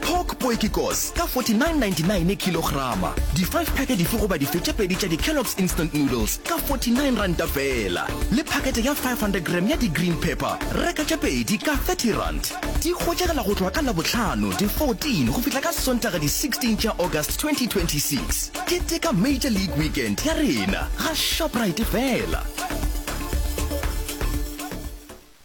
Pork poekikos ka 49.99 kilograma. Di five pack dife goba dife tše pedi tša di Kellogg's Instant Noodles ka 49 ranta feela. Le pakete ya 500 gram ya di green pepper, reka tše pedi ka 30 rand. Di hwetšagala go tloga ka Labohlano di 14 go fihla ka Sontaga di 16 tša August 2026. Keteka Major League Weekend ya rena ga Shoprite feela.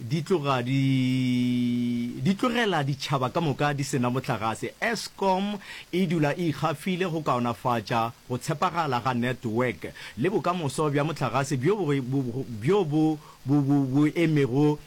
Di tloga di di tlogela ditšhaba ka moka di se na mohlagase. Eskom e dula e ikgafile go kaonafatša go tshepagala ga network le bokamoso bja mohlagase bjo bjo bo bo bo bo emego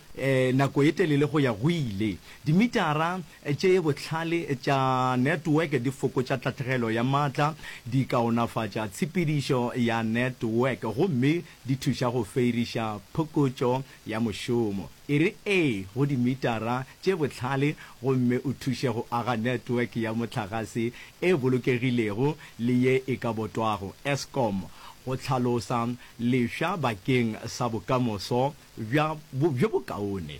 nako e telele go ya go ile. Dimitara tše bohlale tša network di fokotša tahlegelo ya maatla, di kaonafatša tshepedišo ya network gomme di thuša go feiriša phokotšo ya mošomo e re ee go dimitara tše bohlale gomme o thuše go aga network ya mohlagase e bolokegilego le ye e ka botwago, Eskom, go hlalosa lefša bakeng sa bokamoso bjo bokaone.